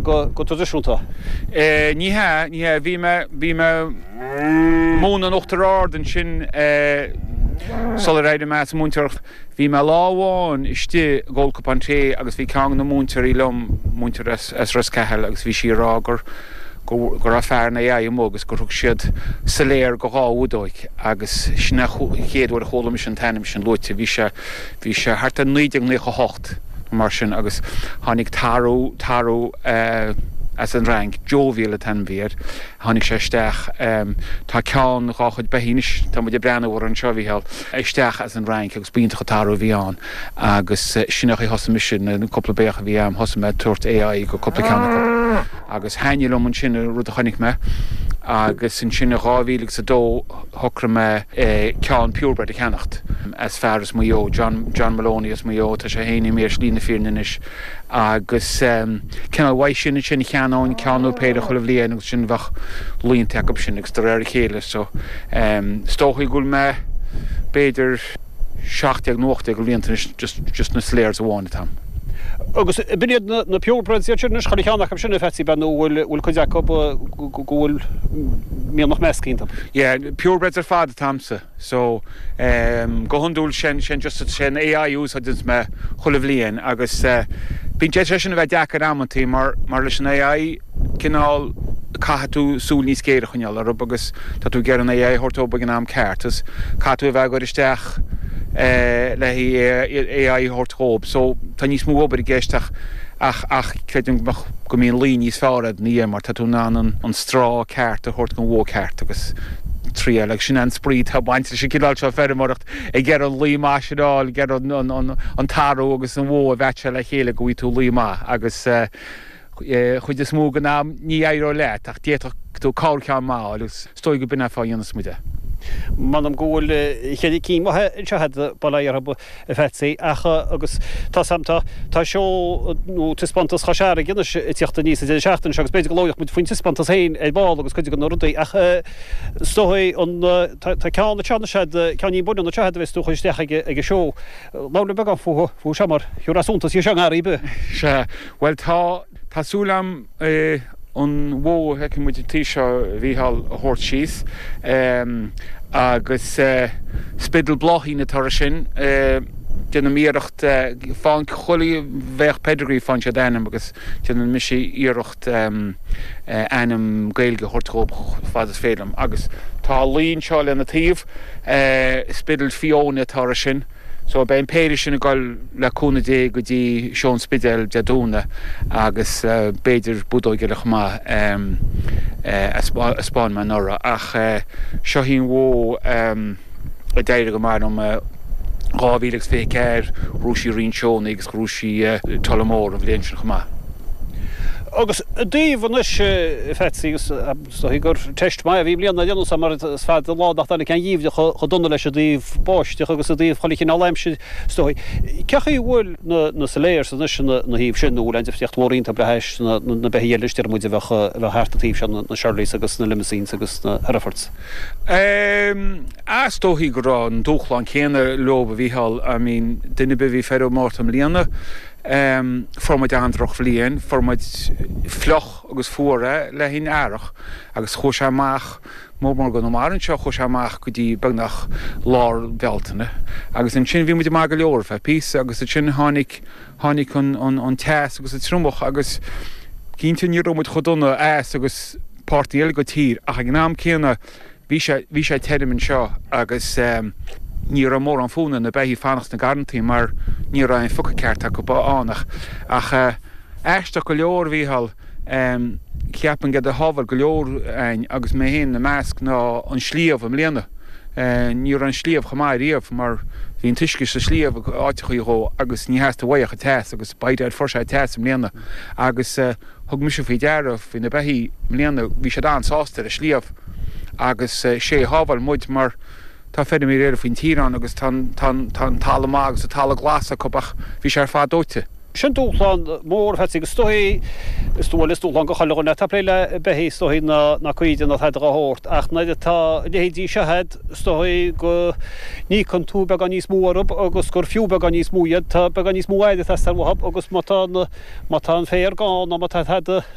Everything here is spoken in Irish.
go traidisiúnta. Ní hea, ní hea. Bhí mé, bhí mé ag múineadh in Uachtar Ard ansin sular éirigh mé as an múinteoireacht. Bhí mé lá amháin istigh ag ól cupán tae agus bhí ceann de na múinteoirí liom, múinteoir as Ros Cathail, agus bhí sí ag rá gur, go raibh fear an AI amuigh agus gur thug siad Salers go dhá bhudóig agus sin an chéad uair a chuala mise an t-ainm sin luaite. Bhí sé. Bhí sé thart ar 1998 nó mar sin agus tháinig tarbh, tarbh as an Fhrainc, Jovial an t-ainm a bhí air, tháinig sé isteach, tá ceann dhá chuid beithígh anois tá muid ag breathnú orthu anseo a Mhícheál, isteach as an Fhrainc agus ba iontach an tarbh a bhí ann agus sin a thosaigh mise, na cúpla beithíoch a bhí a'm, thosaigh mé ag tabhairt AI go cúpla ceann acu agus thaitnigh liom ansin an rud a chonaic mé agus ansin in 2000 agus a dó, shocraigh mé ceann purebred a cheannacht, as fear as Maigh Eo, John, John Moloney as Maigh Eo, tá sé fhéin imithe ar shlí na fírinne anois, agus cineál uaidh sin, ansin cheannóinn ceann nó péire chuile bhliain agus ansin bheadh laonta acub sin, agus de réir a chéile, so, is dóichí go bhfuil mé, b'fhéidir. 17 nó 18 go bhlianta anois just just na Salers amháin atá a'm agus b'in iad na na purebreds iad sin anois chuile cheann acu sin a Phatsy ab ea nó bhfuil bhfuil cuid acu go go bhfuil mianach measctha iontu yeah purebreds ar fad atá a'msa so ehm go hiondúil sin sin just an AI a úsáideanns mé chuile bhliain agus eh bíonn sé sé sin a bheith deacair amantaí mar mar leis an AI cineál, caithfidh tú súil níos géire a choinneáil orthu agus tá tú ag iarraidh an AI a thabhairt dóibh ag an am ceart agus caithfidh tú a bheith á gcur isteach le haghaidh AI a thabhairt dhóibh. So, tá níos mó obair i gceist ach, ach, ach creidim go mbeadh, go mbíonn lao níos fearr agat ina dhiaidh mar tá tú in ann an, an straw ceart a thabhairt gon bhó ceart agus triail agus sin é an spraoi atá ag baint leis an gcineál seo feirmeoireacht, ag iarraidh an lao maith sin a fháil, ag iarraidh an, an, an, an tarbh agus an bhó a mheaitseáil le chéile go bhfaighidh tú lao maith agus eh. chuid is mó den am ní éireoidh leat ach d'fhéadfadh tú corrcheann maith a fháil agus is dóigh go b'in fáth a dhéanas muid é. M'anam go bhfuil cheithre cinn mhaithe anseo agat, bail ó Dhia orthu, a Phatsy, ach, agus tá a fhios a'm, tá, tá seó, nó taispeántas Chois Fharraige anois ag teacht aníos ag deireadh seachtaine seo agus b'fhéidir go labhróidh muid faoin taispeántas féin ar ball agus cuid de na rudaí ach is dóigh an, tá, tá ceann anseo anois agat, ceann ní b'fhuinniúla anseo agat a bheas tú a chur isteach ag an seó. Labhair linn beagán fúthu, fúthu seo mar, thabharfá suntas dóibh seo i ngarraí ar bith. Sea. Bhuel, tá. Tá súil agam an bhó a fheiceann muid an taobh seo a Mhícheál a thabhairt síos agus Spiddal Bláithín atá uirthi sin. Déanaim iarracht faigheann chuile bheithíoch pedigree faigheann siad ainm agus déanann mise iarracht ainm Gaeilge a thabhairt dhób chomh fad is féidir liom. Agus tá a lao anseo lena taobh, Spiddal Fiona atá uirthi sin. So beidh an péire sin ag dul, le cúnamh Dé, go dtí Seó an Spidéil Dé Domhnaigh agus b'fhéidir budóig eile chomh maith a 'spáin mé anuraidh. Ach seo í an bhó a d'éirigh go maith liom. 2024, ghnóthaigh sí roinnt seónna agus ghnóthaigh sí Tullamore an bhliain sin chomh maith. Agus i dtaobh anois, a Pheatsaí, agus Is dóigh gur teist maith a bhí i mbliana ar aon nós mar is fada an lá nach dtáinig aon gheimhreadh chomh dona leis i dtaobh báisteach agus i dtaobh chuile chineál aimsire, is dóigh. Cén chaoi a bhfuil na Salers anois ina thaobh sin nó an bhfuil aon difríocht mhór iontu le hais na beithígh eile déarfaidh muid a bheadh a bheith thart an taobh seo, na Charolais agus na Limousins agus na Herefords? Aaa, is dóigh go raibh an dúshlán céanna leob, a Mhícheáil. I mean, duine ar bith a bhí ag faire ar an Márta i mbliana, fuair muid an-drochbhliain, fuair muid fliuch, agus fuar é le linn earrach agus chuaigh sé amach mar mar go mar anseo chuaigh sé amach go dtí beagnach lár Bealtaine agus ansin bhí muid maith go leor ar feadh píosa agus ansin tháinig tháinig an an an teas agus an triomach agus cinnte ní raibh muid chomh dona as agus páirteanna eile dhon tír ach ag an am céanna Bhí sé, bhí sé tirim anseo agus ní raibh mórán fonn ar na beithígh fanacht sna garrantaí mar ní raibh aon phiocadh ceart acu ann, ach. Ach aisteach go leor, a Mhícheáil, cheapfainn gurb éard a shábháil go leor againn agus mé féin ina measc ná an sliabh i mbliana. Ní raibh an sliabh chomh maith ariamh mar bhí an t-uisce sa sliabh áiteachaí dhó agus ní theastaigh uaidh ach an teas agus by dad, fuair sé teas i mbliana agus, Thug mise faoi deara faoi na beithígh i mbliana, bhí siad an-sásta ar an sliabh agus 'sé a shábháil muid mar tá feilméaraí eile faoin tír ann agus tá an talamh maith agus an talamh glas acu ach bhí sé ar fad dóite. Sin dúshlán mór, a Phatsy, agus is dóigh, is dóigh, is dúshlán do chuile dhuine atá ag plé le beithígh is dóigh ná cuid den airgead a thabhairt ach nuair atá a leithéidí seo a'd, Is dóigh go n-íocann tú beagán níos mó orthu agus gur fiú beagán níos mó iad. Tá beagán níos mó aird ag teastáil uathu agus má tá an féar gann nó má tá tada,